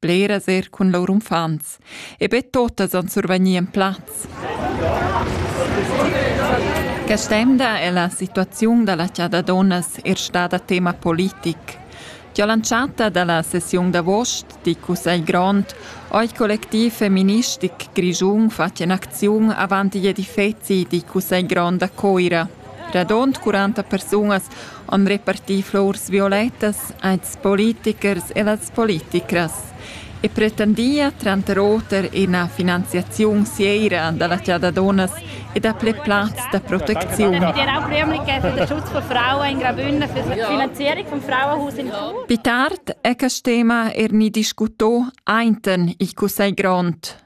bleras er cun lur uffants, e be totas han survegnì en plaz. Quest'emda è la situaziun da la chada donnas er stada tema politic. Già lanciata dalla sessiun d'avost di Cussegl Grond oi collectiv feministic Grischun fatg in acziun avant gli edifezi di Cussegl Grond a Coira – Radund quaranta persunas han repartì flurs violettas als politichers e las politichras e pretendia tranter oter ina finanziaziun seira da la chasa dunnas e dapli plazs da protecziun. Ich werde auch Rühmlichkeit für den Schutz von Frauen in Graubünden für die Finanzierung vom Frauenhaus in Chur. Wie tart, ecas Thema er nie discutò einten il Cussegl Grond.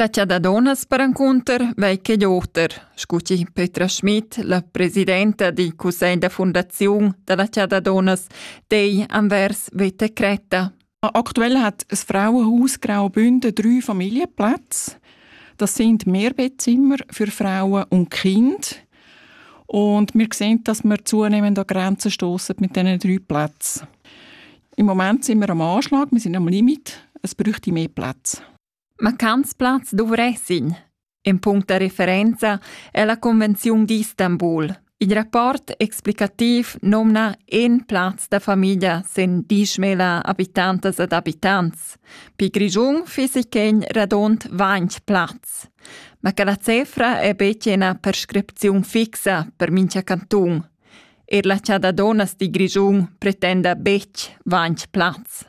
La chada dunnas perencunter vei ch'igl oter, scu chi Petra Schmid, la presidenta dil cussegl da fundaziun dalla chada dunnas, dei anvers veta cretta. Aktuell hat ein Frauenhaus Graubünden drei Familienplätze. Das sind Mehrbettzimmer für Frauen und Kinder. Und wir sehen, dass wir zunehmend an Grenzen stoßen mit diesen drei Plätzen. Im Moment sind wir am Anschlag, wir sind am Limit, es bräuchte mehr Platz. Ma quants plazs dovressin? In punct da referenza è la Convenziun d'Istanbul. Il rapport explicativ nomna in plaz da famiglia sen dieschmila habitantas ed abitants. Pi Grischun fissi quegn radont ventg plazs. Ma che la cefra è betg ina prescripziun fixa per mincha cantun. Er la Chada Donas di Grischun pretenda betg ventg plazs.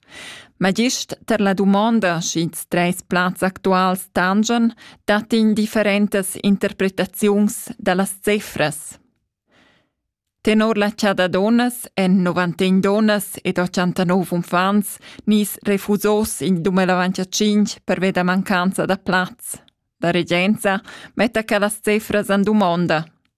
Ma gist tar la dumonda sch'ils trais plazs actuals tangian, dat indifferentas interpretaziuns da las cifras. Tenor la chada donnas èn 91 donnas ed 89 uffants nis refusos in 2025 pervia da mancanza da plaz. La regenza metta quellas cifras en dumonda.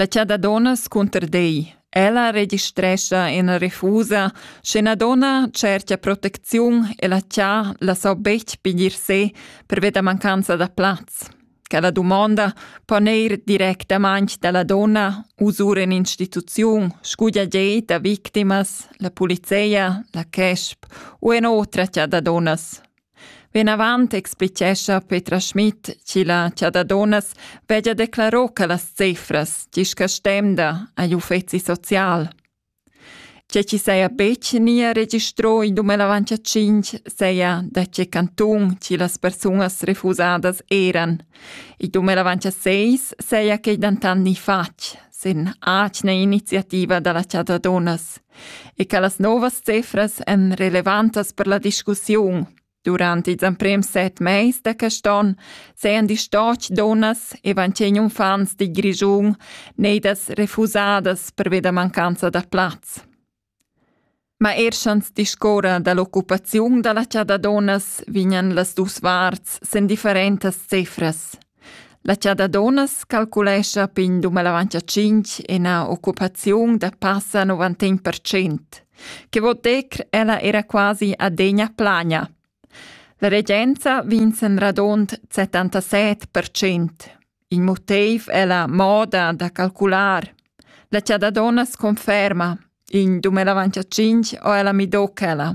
La chada donnas cunter dei. Ella registrescha ina refusa, sche una donna cerca protecziun e la cha la so betg piglier se pervia da mancanza da plaz. Quella domanda po neir directamente dalla donna usur in instituziun, scudia gei da victimas, la polizia, la CESP u en otra chada donnas. Vinavant explichescha Petra Schmid chi la Chadadonas veggia declaro che las cefras discastemda agl uffeci social. Tge chi saja betg nia registro in 2025 saja da tge cantun chi las persunas refusadas eran. In 2026 saja quei dentant ni fatg, sin atgna iniziativa dalla Chadadonas. e che las novas cifras èn relevantas per la discussiun. Durant ils emprims set mais da quest onn sajan distoch dunnas e ventg uffants di Grischun neidas refusadas pervia da mancanza da plaz. Ma er schans discorra dall'occupaziun dalla chada dunnas vignan las dus varts sen differentas cifras. La chada dunnas calculescha pin dumellavant a tschinch ina occupaziun da passa 90 per cent, che vot dir ella era quasi adegna plagna. La regenza vins en radund 77 per cent. Il motiv è la moda da calcular. La chada dunnas conferma, in dumellavant a tschinch o ella midocchela.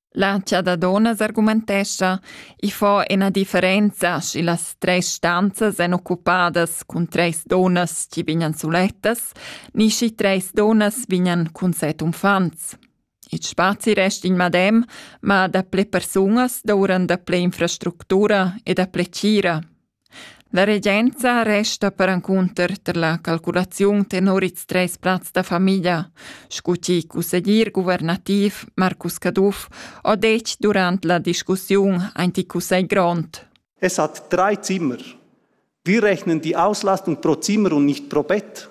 La chada dunnas argumentescha, i fa ina differenza schi las tres stanzas èn occupadas cun treis dunnas chi vignan sulettas, ni schi treis dunnas vignan cun set uffants. Il spazi resta in madem, ma da ple persunas douran da ple infrastructura e da ple tgira. La regenza resta perencunter tar la calculaziun tenor ils treis plazs da famiglia, sco chi cusseglier guvernativ Marcus Caduff ho detg durant la discussiun aint il cussegl grond. Es hat drei Zimmer. Wir rechnen die Auslastung pro Zimmer und nicht pro Bett.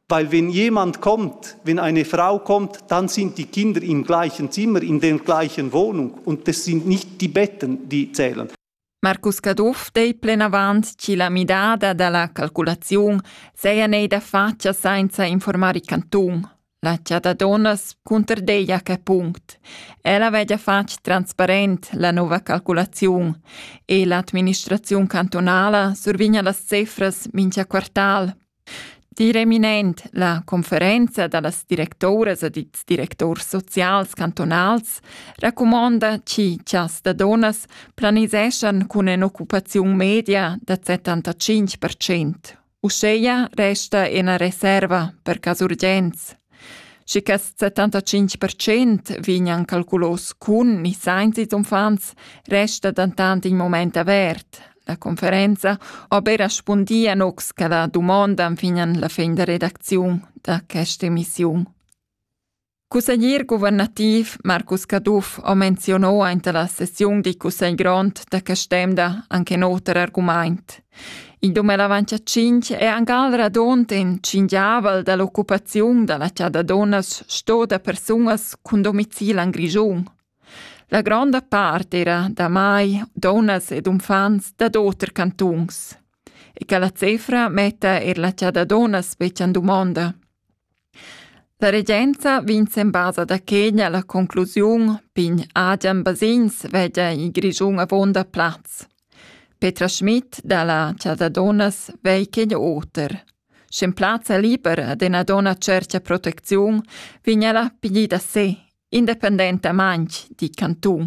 Weil wenn jemand kommt, wenn eine Frau kommt, dann sind die Kinder im gleichen Zimmer, in der gleichen Wohnung und das sind nicht die Betten, die zählen. Marcus Caduff dei plenavant chi la midada da la calculaziun seja neida fatscha sainza informar il cantun. La chata donnas cunterdeja quel punct. Ella vegia fatg transparent la nova calculaziun e l'administraziun cantonala survigna las cefras mincha quartal Dir eminent, la conferenza da las directoras ed ils directors socials cantonals racumonda chi chas da donas planiseschan cun ün'occupaziun media da 75%. Uscheia resta ena reserva per cas urgents. Schi quest 75 percent vegnan calculos cun ni sainza ils uffants resta dentant in moment avert. La conferenza ha be respundi a nocs che la dumondan fin an la fin da redacziun da questa emissiun. Cusseglier guvernativ Marcus Caduff ha menzionò aint la sessiun di cussegl grond da quest'emda anche noter argumaint. In dumber avant cha tschinch è angal radund in tschingiavel da l'occupaziun da la chada dunnas sto da persunas cun domicil en Grischun. La gronda part era damai dunnas ed uffants dad oter cantuns. E che la cefra metta er la chada dunnas betg en dumonda. La regenza vegns en basa da Kenya la conclusiun pign Adrian Basins veggia in Grischun avonda plaz. Petra Schmidt dalla Chasa Donnas vei Kenya oter. Sch'en plazza libera ad ena donna cercia protecziun, vigna la pigli da se, independentamaintg, di cantun.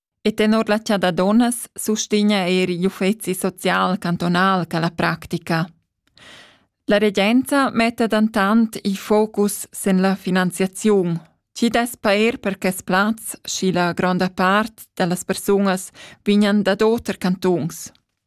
E tenor la chada dunnas sustegna er igl uffeci social cantunal quella practica. La regenza metta dentant il focus sin la finanziaziun, chi dess pair per quest plaz, schi la gronda part da las persunas vignan dad oter cantuns.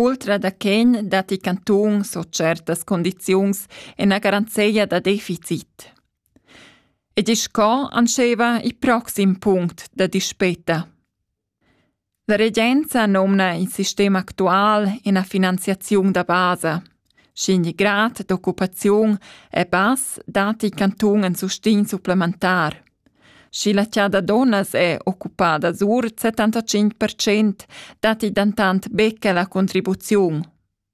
Ultra da quen datti cantuns o tschertas condiziuns ena garanzeia da deficit. Ed isch co anscheva il proxim punct da dispeta. La regenza nomna il sistem actual ena finanziaziun da basa – Sch'in grad d'occupaziun è bass, datti il cantun in sustegn supplementar. Sch'il attier da dunnas è occupada sur 75 percent, datti dentant be quella contribuziun.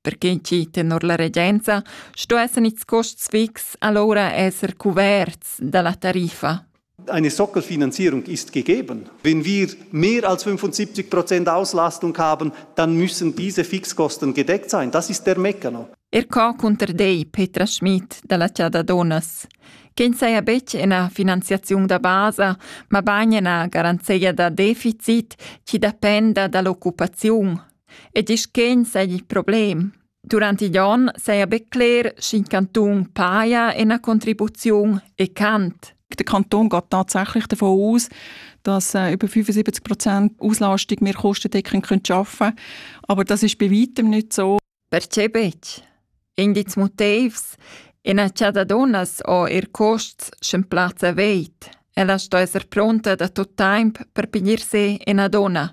Per quien chi tenor la regenza sto esser its costs fix alura esser cuverts da la tariffa. eine Sockelfinanzierung ist gegeben. Wenn wir mehr als 75 Prozent Auslastung haben, dann müssen diese Fixkosten gedeckt sein. Das ist der Meccano. Er ca cunter dei Petra Schmidt dalla Ciada Donas, che saja betg ina finanziaziun da basa, ma bagn ina garanzia da deficit chi dependa dall'occupaziun e disch che sei il problem. Durant igl onn saja be cler sch'in cantun paja ina contribuziun e cant. Der Kanton geht tatsächlich davon aus, dass äh, über 75 Prozent Auslastung wir kostendeckend arbeiten können. Aber das ist bei weitem nicht so. Perché betg? Indiz motivs. In cittadines o ir costs schon Platz aveit. Ella sto esser pronta da tot temp per piglier se in donna.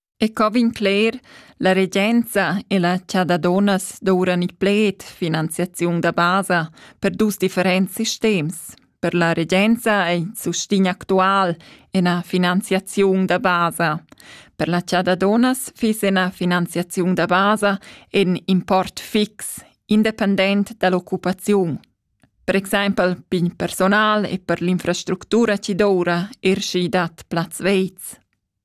E co vegn cler, la regenza e la cha da dunnas douran il pled finanziaziun da basa per dus differents sistems. Per la regenza è il sustegn actual ina finanziaziun da basa. Per la cha da dunnas fiss ina finanziaziun da basa in import fix, independent dall'occupaziun. Per exempel pigl personal e per l'infrastructura ci doura er schi dat plaz veiz.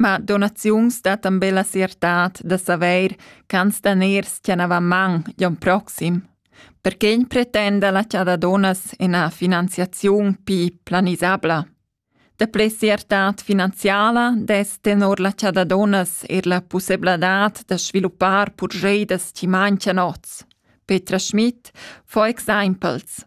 Ma donaziuns dattan be la siertad da savair ch'ans daners tganavan man gl'on proxim. Perquegn pretenda la cha da donas ina finanziaziun pii planisabla? Daplè siertad finanziala dess tenor la cha da donas eir la pussebladad da sviluppar purscheidas chi manchian oz. Petra Schmidt, for examples.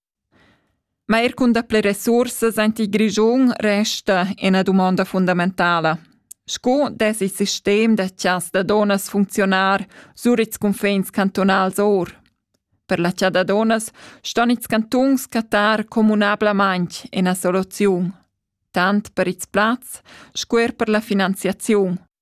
Ma eir cun dapler resursas aint il Grischun resta üna dumonda fundamentala. Sco dess il sistem da chas da donnas funcziunar sur ils cunfins cantunals our? Per la cha da donnas ston ils cantuns cattar communablamaing üna soluziun, tant per ils plazs sco eir per la finanziaziun.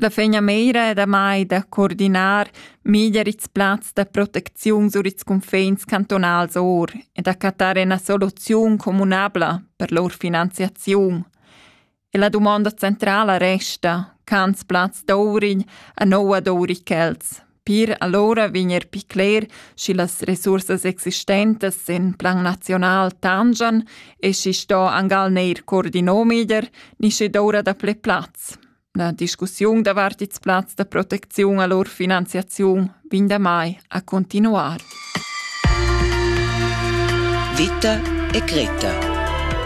La fegnameira è damai da coordinar meglier ils plazs da protecziun sur ils cunfins cantonals or e da cattar ina soluziun communabla per lur finanziaziun. E la dumonda centrala resta, cans plaz d'Ourign a noua d'Ourichels. Per allora vigner pi cler, schi las resursas existentes in plan nazional tangian e schi sto angal neir coordino meglier, ni schi doura da ple plaz. La discussiun davart ils plazs da protecziun a lur finanziaziun vegn da mai a continuar. Vita e Greta